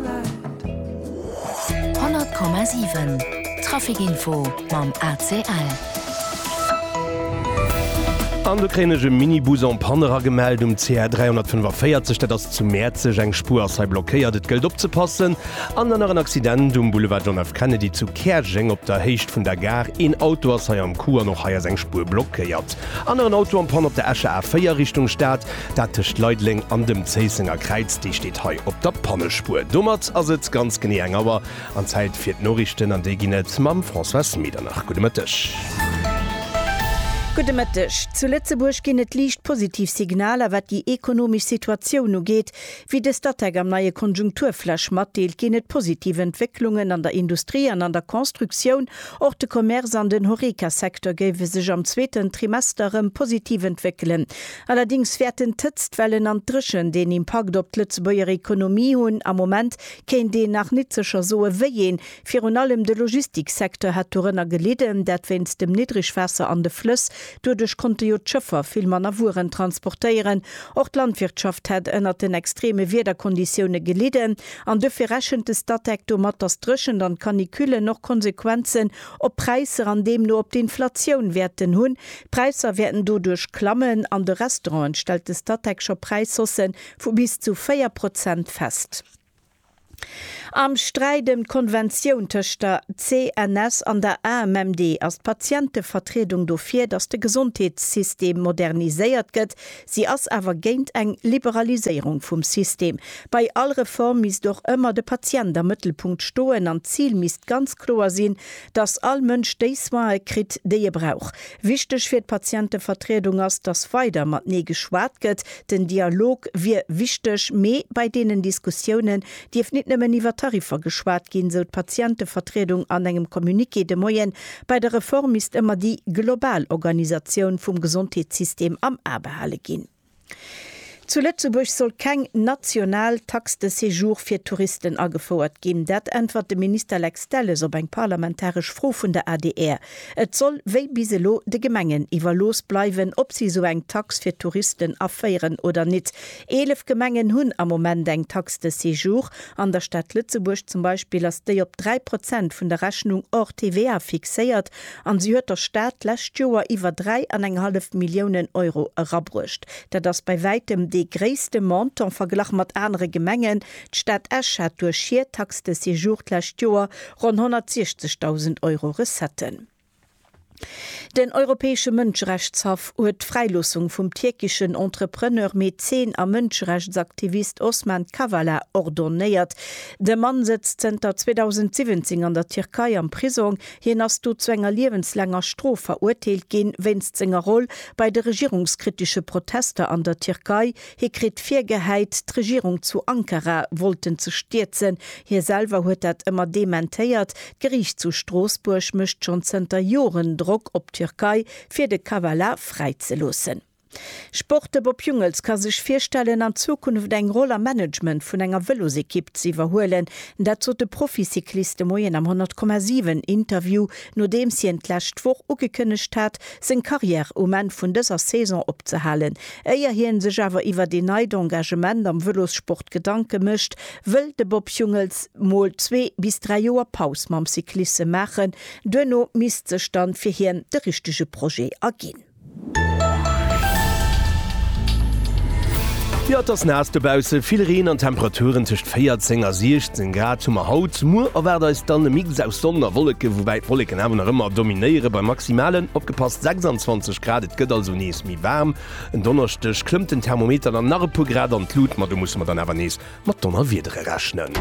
100,7 Trafic Info mam ACL. An do kréien ech e Minibus en panne eragemellt um CR 345. Dat ass zu Mäerzeg. Eng Spuer ass hei blockéiert. Et gëllt opzepassen. An dann nach en Accident um Boulevard John F. Kennedy zu Käerjeng op der Héicht vun der Gare. Een Auto ass hei am Coup an och hei ass eng Spuer blockéiert. Aneren Auto en panne op der Escher A4 Richtung Stad. Dat tëscht Leideleng an dem Zéissenger Kräiz, déi steet hei op der Pannespur. Domat ass et ganz genee eng Auer an Zäit fir d'Noriichten an déi ginn et mam Françoise Medernach. Gudde Mëtteg. Gudde Mëtteg. Zu Lëtzebuerg ginn et liicht positiv Signaler, wat déi ekonomesch Situatioun ugeet. Wéi de Statec am neie Konjunkturflash matdeelt, ginn et positiv Entwécklungen an der Industrie an an der Constructioun. Och de Commerce an den Horeca-Secteur géife sech am zweeten Trimester erëm positiv entwéckelen. Allerdings wäerten d'Hëtztwellen an d'Dréchent een Impakt op d'Lëtzebuerger Ekonomie hunn. Am Moment kéint een nach nit sécher soe wéieen. Virun allem de Logistiksecteur hätt dorënner gelidden, dat wéinst dem Niddrigwaasser an de Flëss. Doduerch konnte jo d'Schëffer vill manner Wueren transportéieren. Och d'Landwirtschaft hätt ënnert den extreme Wiederkonditioune gelidden. An duerfir rechent de Statec domat, dass d'Dréchent an d'Canicullen och Konsequenzen op d'Präisser an deemno op d'Inflatioun wäerten hunn. D'Präisser wäerten doduerch klammen. An de Restauranten stellt de Statec scho Präishausse vu bis zu 4 Prozent fest. Am Sträit ëm d'Konventioun tëscht der CNS an der AMMD ass d'Patientevertriedung dofir, datt de Gesondheetssystem moderniséiert gëtt, Si ass awer géint eng Liberaliséierung vum System. Bei all Reform misst och ëmmer de Patient am Mëttelpunkt stoen an d'Zil misst ganz kloer sinn, dass all Mënsch déi Soine kritt, déi e brauch. Wichteg fir d'Patientevertriedung ass, dass weider matenee geschwat gëtt. Den Dialog wier wichteg, mee bei deenen Diskussiounen dierf nit nëmmen iwwer Tariffer geschwat ginn, sou d'Patientevertriedung an engem Communiqué de Moien. Bei der Reform misst ëmmer déi global Organisatioun vum Gesondheetssystem am A behale ginn. Zu Lëtzebuerg soll keng national Taxe de séjour fir Touristen agefouert ginn. Dat äntwert de Minister Lex Delles op eng parlamentaresch Fro vun der adr. Et soll wéi bis elo de Gemengen iwwerlooss bleiwen, ob si sou eng Tax fir Touristen aféieren oder nit. Eelef Gemengen hunn am Moment eng Taxe de séjour. An der Stad Lëtzebuerg zum Beispill ass déi op 3 Prozent vun der Rechnung hors TVA fixéiert an si huet der Stad d'lescht Joer iwwer 3 an eng hallef Milliounen Euro erabruecht. Dat ass bei wäitem dee gréisste Montant verglach mat anere Gemengen. D'Stad Esch hat duerch hir Taxe de séjour d'lescht Joer ronn 160.000 Euro Recetten. Den Europäesche Mënscherechtshaff huet d'Fräiloossung vum tierkeschen Entrepreneur, Mäzen a Mënscherechtsaktivist Osman Kavala ordonéiert. De Mann sëtzt zënter 2017 an der Tierkei am Prisong. Hien ass do zu enger liewenslaanger Strof verurteelt ginn, wéinst senger Roll bei de regierungskritesche Protester an der Tierkei, Hie kritt virgehäit, d'Regierung zu Ankara wollten ze stierzen. Hie selwer huet dat ëmmer dementéiert. D'Geriicht zu Stroossbuerg mécht schonn zënter Joren Drock op d'Türkei, fir de Kavala fräizeloossen. Sport, De Bob Jungels ka sech virstellen, an Zukunft eng Roll am Management vun enger Vëlosekipp ze iwwerhuelen. Dat sot de Proficyclist de Moien am 100,7 Interview, nodeems hien d'lescht Woch ugekënnegt hat, seng Karriär um Enn vun dëser Saison opzehalen. Éier hien sech awer iwwert een neit Engagement am Vëlossport Gedanke mécht, wëll de Bob Jungels mol zwee bis dräi Joer Paus mam Cyclisse maachen. Duerno misst sech dann fir hien de richtege Projet erginn. Jo et ass naass dobausse, vill Reen an Temperaturen tëscht 14 a 16 Grad hu mer haut. Muer erwaart eis dann e Mix aus Sonn a Wolleken, woubäi d'Wolleken awer nach ëmmer dominéiere bei Maximalen, opgepasst, 26 Grad. Et gëtt also nees méi. Waarm. En Donneschdeg klëmmt den Thermometer dann nach e puer Grad an d'Lut, ma do musse mer dann awer nees mat Donnerwiedere rechnen.